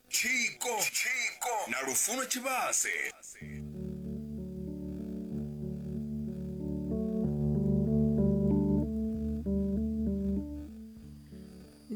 tshiko tshiko na lufuno tshivhase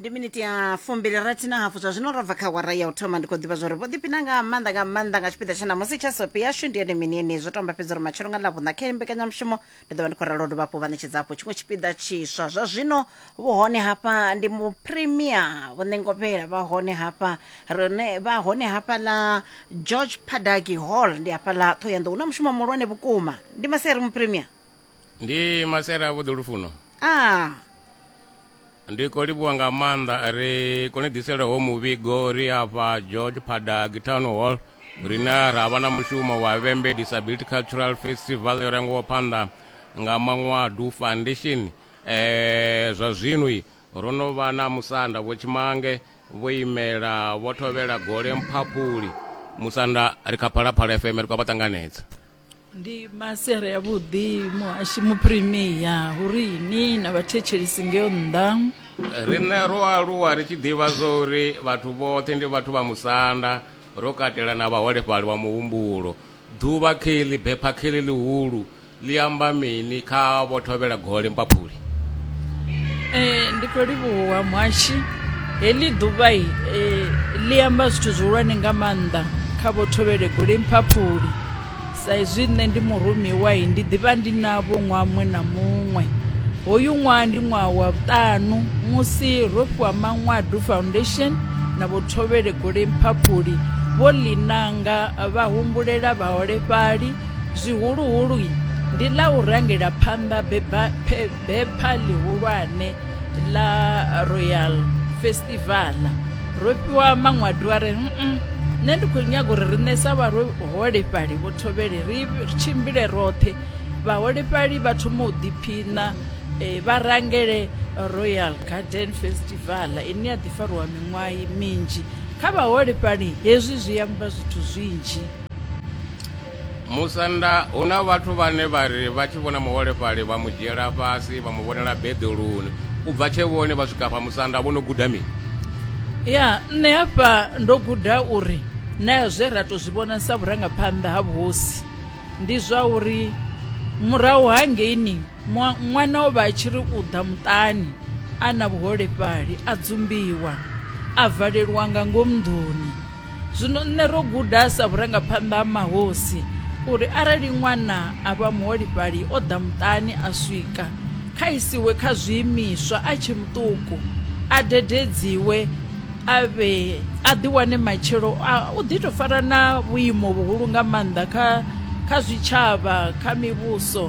ndi miniti ya fumbili rathi na hafu zwa zwino ro bva kha wara ya u thoma ndi khou ḓivha zwa uri vho ḓipina nga maanḓa nga maanḓa nga tshipiḓa tsha namusi tsha sopi yashu ndi yone mini yene zwo tamba fhedza uri matshelo nga ḽavhuṋa khe mbekanyamushumo ndi ḓo vha ndi khou ralo dovha hafhu vha ṋetshedza hafhu tshiṅwe tshipiḓa tshiswa zwa zwino vhu hone hafha ndi mu premier vho ṋengopela vha hone hafha rine vha hone hafha ḽa george padaki hall ndi hafha ḽa thohoyanḓou na mushumo muhulwane vhukuma ndi maseri mu premier ndi masera vhuḓo lufuno ah Ndi khou livhuwa nga maanḓa ri kone ḓisela ho muvhigo ri afha George Phadag Town Hall rine ra vha na mushumo wa Vhembe Disability Cultural Festival yo rangiwa phanḓa nga Manwadu Foundation eh zwa zwino ro no vha na musanda vho Tshimange vho imela vho thovhela gole mphaphuli musanda ri kha phalaphala FM ri khou vha ṱanganedza ndi masiari ya vhuḓi muhashi muprimiya hu ri ni na vhathetshelisi ngeyo nnḓa riṋe ro aluwa ri tshi ḓivha zwo uri vhathu vhoṱhe ndi vhathu vha musanda ro katela na vhaholefhali wa muhumbulo ḓuvha kheli bepha kheli ḽihulu ḽi amba mini kha vho thovhela gole mpaphuli Ee, ndi khou livhuwa muhashi heḽi ḓuvha i eh, ḽi amba zwithu zwihulwane nga maanḓa kha vho thovhele gule mphaphuli sa izwi nṋe ndi murumiwa i ndi ḓivha ndi navho ṅwaha muṅwe na muṅwe hoyu ṅwaha ndi ṅwaha wa vhuṱanu musi ro fhiwa maṅwadu foundation na vho thovhele gule mphaphuli vho ḽi nanga vha humbulela vhaholefhali zwihuluhulu ndi ḽa u rangela phanḓa bepha ḽihulwane ḽa royal festival ro fhiwa maṅwadu a re nṋe ndi khou nyaga uri riṋe sa vhaholefhali vho thovhele ri tshimbile roṱhe vhaholefhali vha thoma u ḓiphiṋa um vha rangele royal garden festival ine ya ḓi fariwa miṅwaha minzhi kha vhaholefhali hezwi zwi amba zwithu zwinzhi musanda hu na vhathu vhane vha ri vha tshi vhona muholefhali vha mu dzhiela fhasi vha mu vhonela beḓeloni u bva tshe vhone vha swika fha musanda vho no guda mini ya nṋe hafha ndo guda uri na zwe ra tou zwi vhona sa vhurangaphanḓa ha vhuhosi ndi zwa uri murahu ha ngeini Ṅwana o vha a tshi ri u ḓa muṱani a na vhuholefhali a dzumbiwa a valelwa nga ngomu nḓuni zwino nṋe ro guda sa vhurangaphanḓa ha mahosi uri arali ṅwana a vha muholefhali o ḓa muṱani a swika kha isiwe kha zwiimiswa a tshe muṱuku a dededziwe a vhe a ḓiwane matshelo u ḓi tou fara na vhuimo vhuhulu nga maanḓa kha kha zwitshavha kha mivhuso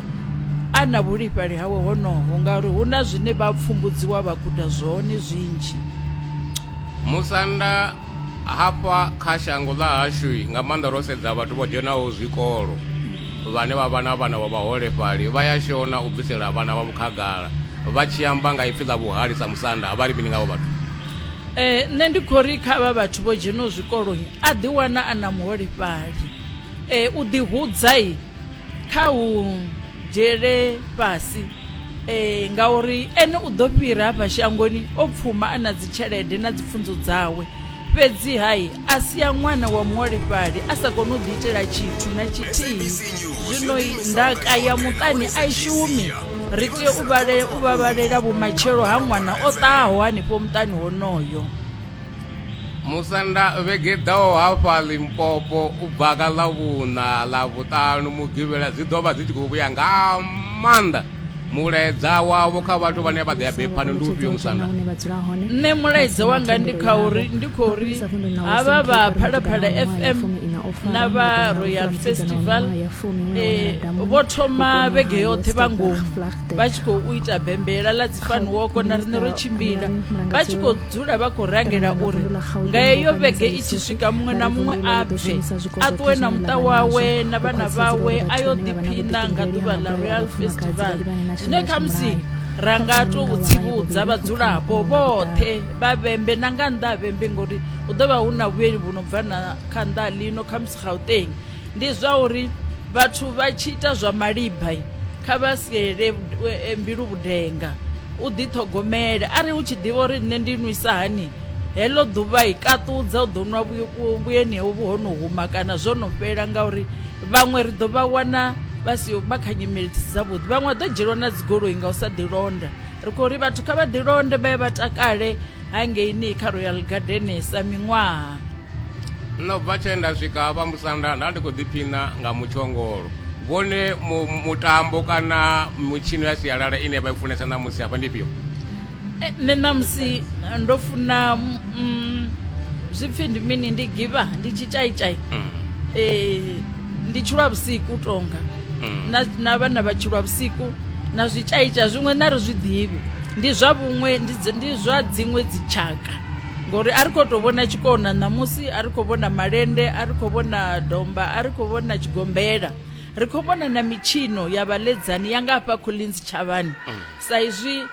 a na vhuḓifhali hawe honoho ngauri hu na zwine vha pfumbudziwa vha guda zwone zwinzhi musanda hafha kha shango ḽa hashu nga maanḓa ro sedza vhathu vho dzhenaho zwikolo vhane vha vha na vhana vha vhaholefhali vha ya shona u bvisela vhana vha vhukhagala vha tshi amba nga ipfi ḽa vhuhali sa musanda vha ri mini ngavho vhathu Eh, nṋe ndi khou ri kha vha vhathu vho dzheno zwikoloi a ḓi wana a na muholefhali eh, u ḓi hudzai kha u dzhiele fhasi eh, ngauri ene u ḓo fhira hafha shangoni o pfuma a na dzitshelede na dzipfunzo dzawe fhedzi hai a sia ṅwana wa muholefhali a sa koni u ḓiitela tshithu na tshithihi zwino ndaka ya muṱani a i shumi ri tea u vhalela u vhavhalela vhumatshelo ha ṅwana o ṱahaho hanefho muṱani honoyo musanda vhege ḓaho hafha limpopo u bva ka ḽa vhuṋa ḽa vhuṱanu mugivhela dzi ḓo vha dzi tshi khou vhuya nga maanḓa mulaedza wavho kha vhathu vhane vha ḓea bephani ndi ufhio musanda nṋe mulaedza wanga ndi kha uri ndi khou ri havha vha phalaphala fm na vha royal festival eh, vho thoma vhege yoṱhe vha ngomu vha tshi khou ita bembela ḽa dzifaniwoko na riṋe ro tshimbila vha tshi khou dzula vha khou rangela uri nga heyo vhege i tshi swika muṅwe na muṅwe a bve a ṱuwe na muṱa wawe na vhana vhawe a yo ḓiphina nga ḓuvha ḽa royal festival zwine khamusi ra nga tou tsivhudza vhadzulapo vhoṱhe vha vhembe na nga nnḓa ha vhembe ngori hu ḓo vha hu na vhuyeli vhu no bva na kha nnḓa lino khamusi gauteng Ndi zwa uri vhathu vha tshi ita zwa malibha kha vha siele e, mbilu vhudenga u ḓiṱhogomele arali hu tshi ḓivha uri nṋe ndi nwisa hani heḽo ḓuvha i kaṱudza u ḓo nwa vhuyeni hovhu ho no huma kana zwo no fhela ngauri vhaṅwe ri ḓo vha wana vha si vha kha nyimele dzi si dzavhuḓi vhaṅwe vha ḓo dzhielwa na dzigoloi nga u sa ḓilonda ri khou ri vhathu kha vha ḓilonde vha ye vha takale hangeini kha royal gardenesa miṅwaha Nṋe u bva tshe nda swika vha musanda nda ndi khou ḓiphina nga mutshongolo vhone mutambo kana mitshino ya sialala ine vha i funesa ṋamusi hafha ndi fhio eh, nṋe ṋamusi eh, ndo funa mm, zwi pfi ndi mini ndi giva ndi tshitshaitai mm. eh, ndi tshulwa vhusiku tonga mm. na vhana vha tshulwa vhusiku na zwitshaitai zwiṅwe na ri zwi ḓivhi ndi zwa vhuṅwe ndi zwa dziṅwe dzitshaka ngori a ri khou tou vhona tshikona ṋamusi a ri khou vhona malende a ri khou vhona domba a ri khou vhona tshigombela ri khou vhona na mitshino ya vhaledzani ya nga hafha collins tshavhani mm. sa izwi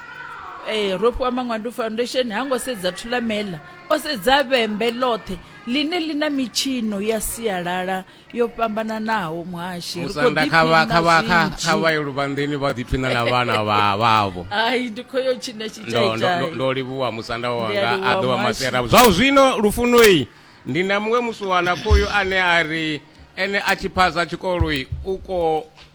eh, ro fhiwa mangwandu foundation ha ngo sedza thulamela o sedza vhembe ḽoṱhe ḽine ḽi na mitshino ya sialala yo fhambananaho muhashi ri khou ḓiphinakha vhayo luvhanḓeni vha ḓiphina na vhana vhavho ai ndi khou yo tshina tshitshaindo livhuwa musanda wanga a ḓo wa masera zwa zwino lufunoi ndi na muṅwe musiwana khoyu ane a ri ene a tshi phasa tshikoloi u ko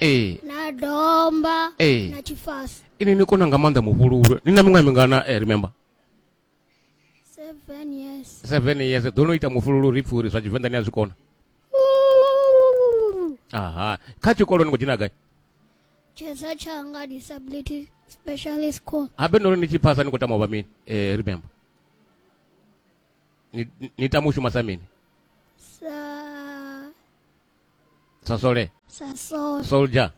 ee na domba Ee. na tshifasi ini ni kona nga maanḓa muvhululwe ni na miṅwaha mingana eh, remember seven years seven years ḓo no ita mufhululu ri pfhi uri zwa tshivenḓa ni a zwi kona aha kha tshikolo ni khou dzhena gai tshedza tshanga disability specialist school habe nori ni tshi phasa ni khou tama u vha mini eh, remember ni, ni- ni tama u shuma sa mini sa sasole sasole soldier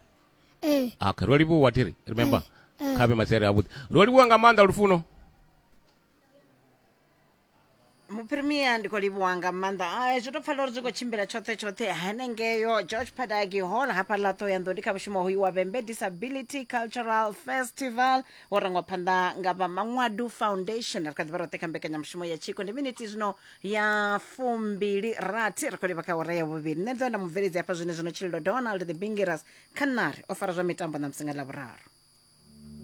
eh okay ro livhuwa tiri remember eh. kha vhe masere avhuḓi ro livhuwa nga maanḓa lufuno muprimia ndi khou livhuwa nga maanḓa ai zwi to pfala uri zwi khou tshimbila tshoṱhe tshoṱhe hanengeyo george padaki hall hafha ḽa ṱoyando ndi kha mushumo hoyu wa vhembe disability cultural festival wo rangwa phanḓa nga vha maṅwadu foundation ri kha ḓivha roṱhe kha mbekanyamushumo ya tshiko ndi miniti zwino ya fumbili rathi ri khou livha kha ora ya vhuvhili nṋe ḓo nda mubveledzi hafha zwine zwino tshililo donald the bingeras khanari o fara zwa mitambo na musinga ḽa vhuraru